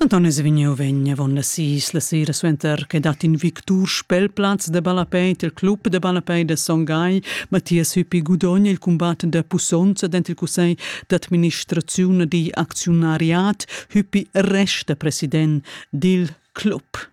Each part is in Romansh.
Anton es vegniu vegn avon la sis la sera suenter che dat in victur spelplaz de ballapei il club de ballapei de Son Gai, Mathias Hüppi gudogna il combat de pussonza dent il cussegl d'administraziun di acziunariat, Hüppi resta president dil club.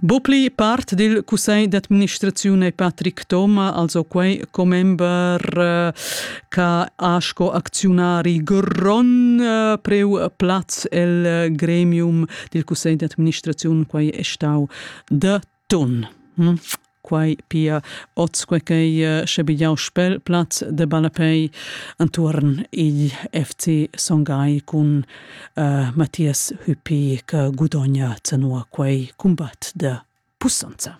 Bopli part dil cussegl d'administraziun ei Patrick Thoma, also quei commember eh, che ha sco acziunari gron eh, preu plaz el eh, gremium dil cussegl d'administraziun, quei è stau de ton. Hm? quai pia oz quai che schabigliau spel plaz de ballapei entuorn igl FC Songai cun uh, Matthias Hüppi che gudogna tenor quei combat de pussonza.